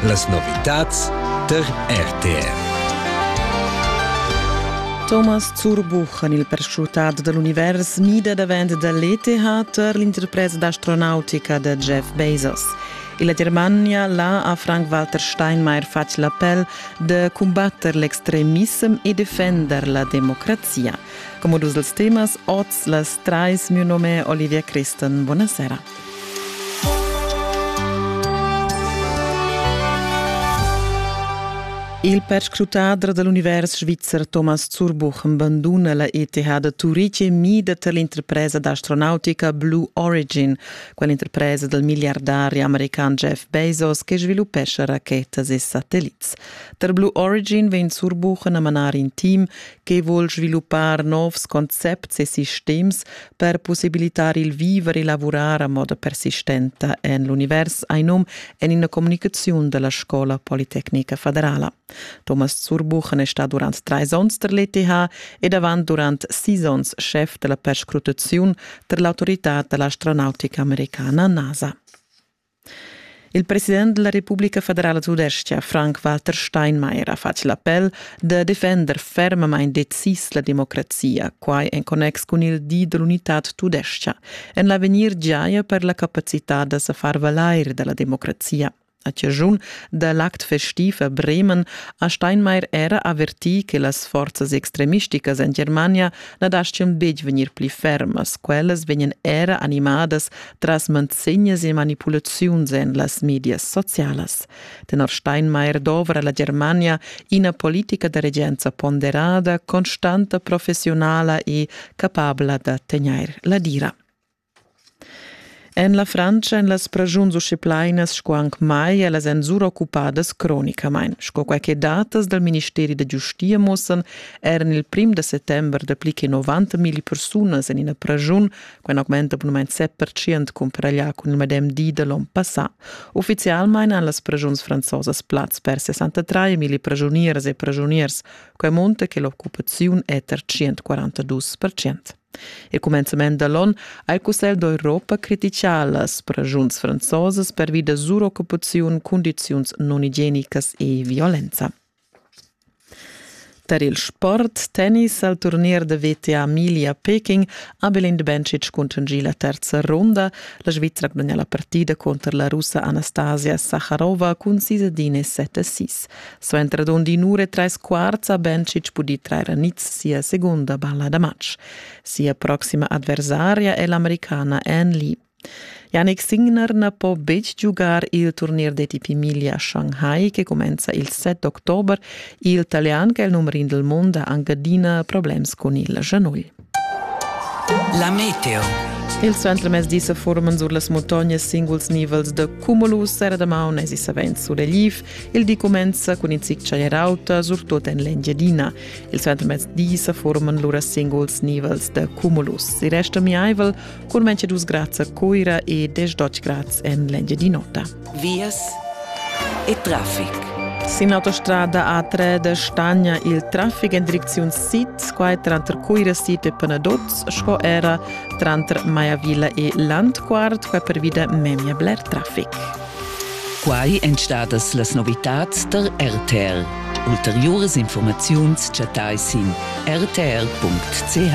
Las novitads tar RTR. Thomas Zurbuch en il perschutat da l'univers mida davent da l'ETH tar l'interpresa d'astronautica da Jeff Bezos. E la Germania là ha Frank-Walter Steinmeier fatg l'appel de combatter l'extremissem e defender la democrazia. Come dus dels temas, oz las trais, mio nome è Olivia Christen. Buonasera. Il perscrutader da l'univers svizzer Thomas Zurbuchen banduna la ETH da Turitg e mida tar l'interpresa d'astronautica Blue Origin, quell'interpresa dal miliardari american Jeff Bezos che sviluppescha rachetas e satellits. Tar Blue Origin vegn Zurbuchen a manar in team che vul sviluppar novs concepts e sistems per possibilitar il viver e lavurar a moda persistenta en l'univers, ein num en ina communicaziun della Scola Politecnica Federala. Thomas Zurbuchen è stato durante drei onns der l'ETH ed avant durant sis onns chef della perscrutazione der l'autorità dell'astronautica americana NASA. Il president della Republika federala tudestga Frank-Walter Steinmeier ha fatg l'appel da defender fermamain decis la democrazia, quai en connex cun il di dell'unitad tudestga, en l'avegnir giaja per la capacità da sa far valair dalla democrazia. A ciaschun da l'act festiv a Bremen ha Steinmeier era avertì che las forzas extremisticas en Germania na daschian betg vegnir pli fermas, quellas vegnan era animadas tras manzegnas e manipulaziuns en las medias socialas. Tenor Steinmeier dovra la Germania ina politica da regenza ponderada, constanta, professionala e capabla da tegnair la dira. En la Frantscha en las pragiuns uscheplainas sco anc mai, ellas èn suroccupadas cronicamain. Sco quai che datas dal Ministeri da giustia mussan, eran il prim da settember dapli che 90 milli persunas en ina pragiun Quin augmenta bunamain 7% cumparaglià cun il medem di da l'on passà. Uffizialmain han las preschuns franzosas plaz per 63 mila preschunieras e preschuniers, quai munta che l'occupaziun è tar 142%. Il cumenzament da l'on ha il Cussegl d'Europa criticà las preschuns franzosas pervi da suroccupaziun, cundiziuns non igienicas e violenza. Tar il sport tennis al turnier da WTA Emilia-Peking ha Belin Bencic cuntanschì la terza ronda. La Svizra gudagna la partida cunter la Russa Anastasia Saharova cun sis ad in e set a sis. Suenter dond in ura e trais quarts ha Bencic pudì trair a niz sia segunda balla da matg. Sia proxima adversaria è l'americana Anne Lee. Yannick Signer na po betg giugar il turnier d'ETP Emilia Shanghai che cumenza il 7 october. Il Talian che è il numero in del mondo ha anche adina problems con il Genui. La meteo. Il suentermezdi se forman sur las montognas singuls nivels de cumulus era damaun es savens sur relief. Il di comenza con in zic rauta, surtut en l'Engiadina. Il suentermezdi se forman lura singuls nivels de cumulus. Il resto miaivel Curmenche dus grads a Coira e 10 grads en l'Engiadin'Ota. Vias e traffic. Sin autostrada A3 de Stagna il traffic en direcziun sid, quai tranter Coira Sid e Penadots, sco era tranter Maiavilla e Landquart, quai pervida memia bler traffic. Quai èn stadas las novitads der RTL. Ulteriores Informaziuns chattai sin rtr.ch.